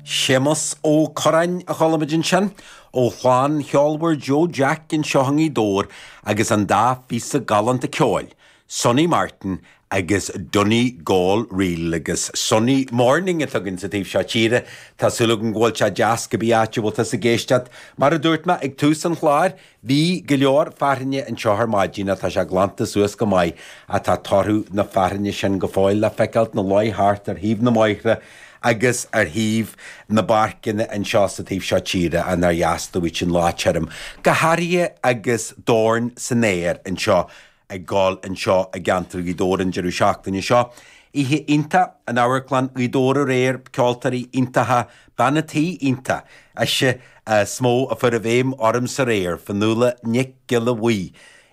Séamus Ó Curráin a chuala muid ansin, ó chlann cheolmhar Joe Jack anseo i nGaoth Dobhair agus an dá phíosa galánta ceoil, Sonny Martin agus Donegal Reel, agus sunny morning atá againn sa taobh seo tíre. Tá súil agam go bhfuil sé deas cibé áit a bhfuil tusa ag éisteacht. Mar a dúirt mé ag tús an chláir, Bhí go leor fearthainne anseo ar maidin ach tá sé glanta suas go maith, ach tá torthaí na fearthainne sin go fóill le feiceáilt ina luí thart ar thaobh na mbóithre agus ar thaobh na bpáirceanna anseo sa taobh seo tíre nár dheas duit an lá tirim, go háirithe agus Dorn san Aer anseo. ag gabháil anseo i gceantar Ghaoth Dobhair an deireadh seachtaine seo. Oíche iontach in Amharclann Ghaoth Dobhair aréir, ceoltóirí iontacha, banna tí iontach. Ise is mó a chuaigh i bhfeidhm ormsa aréir, Fionnuala Nic Giolla Bhuí.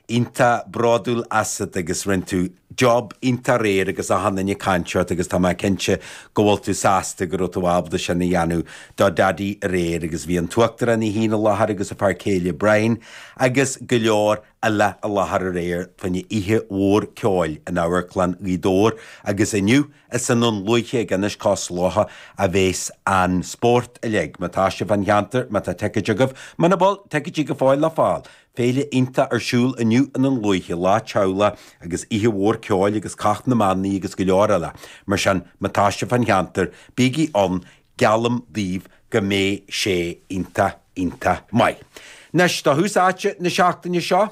Iontach bródúil asat agus rinne tú job iontach aréir agus achan duine ag caint ort agus tá mé cinnte go bhfuil tú sásta go raibh tú ábalta sin a dhéanamh do Daidí aréir agus bhí an tUachtarán í féin i láthair agus a fear céile Brian agus go leor eile i láthair aréir fá choinne oíche mhór ceoil in Amharclann Ghaoth Dobhair agus inniu is i nDún Lúiche ag Ionad Cois Locha a bheas an spórt uilig. Má tá sibh fán cheantar, má tá ticéid agaibh, muna bhfuil, ticéidí go fóill le fáil, féile iontach ar siúl inniu i nDún Lúiche, lá teaghlaigh agus oíche mhór ceoil agus cath na mbannaí agus go leor eile. Mar sin, má tá sibh fán cheantar, bígí ann Geallaim daoibh go mbeidh sé iontach, iontach maith. Anois, do thús áite na seachtaine seo,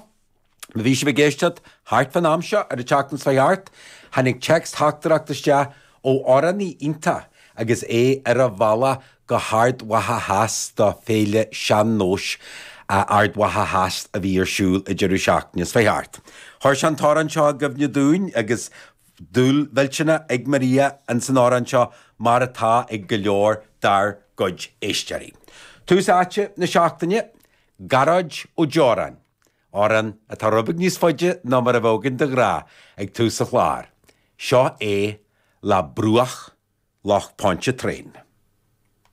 má bhí sibh ag éisteacht thart fán am seo ar an tseachtain seo thart, tháinig téacs theachtaireacht isteach ó amhránaí iontach agus é ar a bhealach go hArd Mhacha Theas do Féile Sean-Nóis Ard Mhacha Theas a bhí ar siúl an deireadh seachtaine seo thart. Chuir sé an t-amhrán seo i gcuimhne dúinn agus. dúil mhillteanach ag Maria ins an amhrán seo, mar atá ag go leor dár gcuid éisteoirí. Tús Áite na Seachtaine, Gearóid Ó Deoráin, Amhrán atá rud beag níos faide ná mar a bheadh againn de ghnáth ag tús an chláir. Seo é le Bruach Loch Pontchartrain.